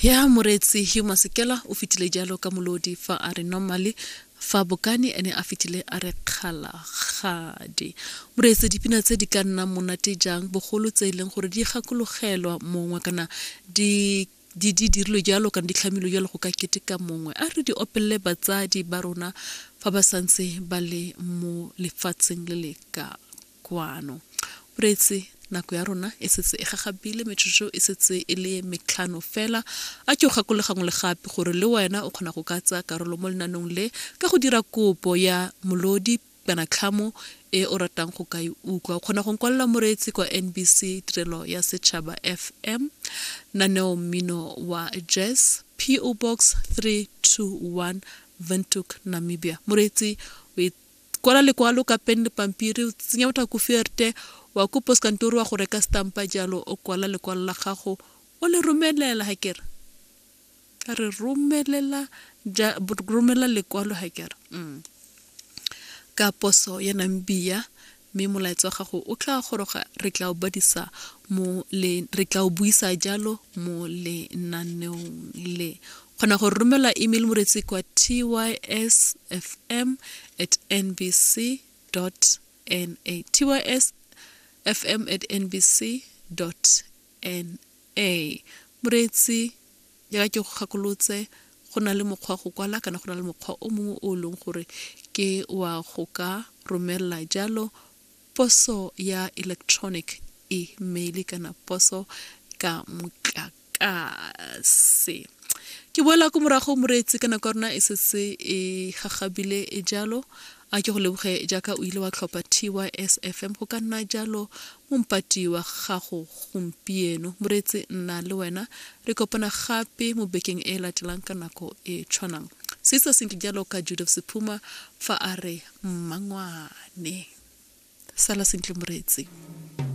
ya moreetsi yo masekela o fetile jalo ka molodi fa a re normally fa bokane ene a fetile a re kgalagadi moreetse dipina tse di ka nnang monate jang bogolo tse e leng gore di gakologelwa mongwe kana di di di dirilwe jalo kana di tlhamilwe jalo go ka keteka mongwe a re di opelele batsadi ba rona fa ba santse ba le mo lefatsheng le le ka Kwano. O reetse, Nako ya rona e setse e gagabile, metsotso e setse e le metlhano fela. A ke o gakole gangwe le gape gore le wena o kgona go ka tsaya karolo mo lenaneong le ka go dira kopo ya molodi kana tlhamo e o ratang go ka e utlwa. O kgona go nkwalela moreetsi kwa NBC Tirelo ya Setšhaba FM, Naneo Mmino wa Jazz, PO Box 321, Windhoek, Namibia. Moreetsi o Kwala lekwalo ka pen le pampiri, o tsenya botha ko fierte, wa ko poskantori wa go reka stampa jalo o kwala lekwalo la gago o le romelela ha kere. A re romelela ja romelela lekwalo ha kere. Mm. Ka poso ya Namibia mme molaetsa wa gago o tla goroga re tla o badisa mo le re tla o buisa jalo mo lenaneong le kgona go romela email moretsi kwa tysfm at nbc na tysfm at nbc na moretsi jaaka ke go gakolotse go na le mokgwa go kwala kana go na le mokgwa o mongwe o e leng gore ke wa go ka romelela jalo poso ya electronic email kana poso ka motlaka tlase ke boela ko morago moreetsi ka nako ya rona e setse e gagabile e jalo a ke go leboge jaaka o ile wa tlhopha tysfm go ka nna jalo mompati wa gago gompieno moreetsi nna le wena re kopana gape mo bekeng e latelang ka nako e tshwanang se se senke jalo ka judef sephuma fa a re mmangwane sala sentle moreetsi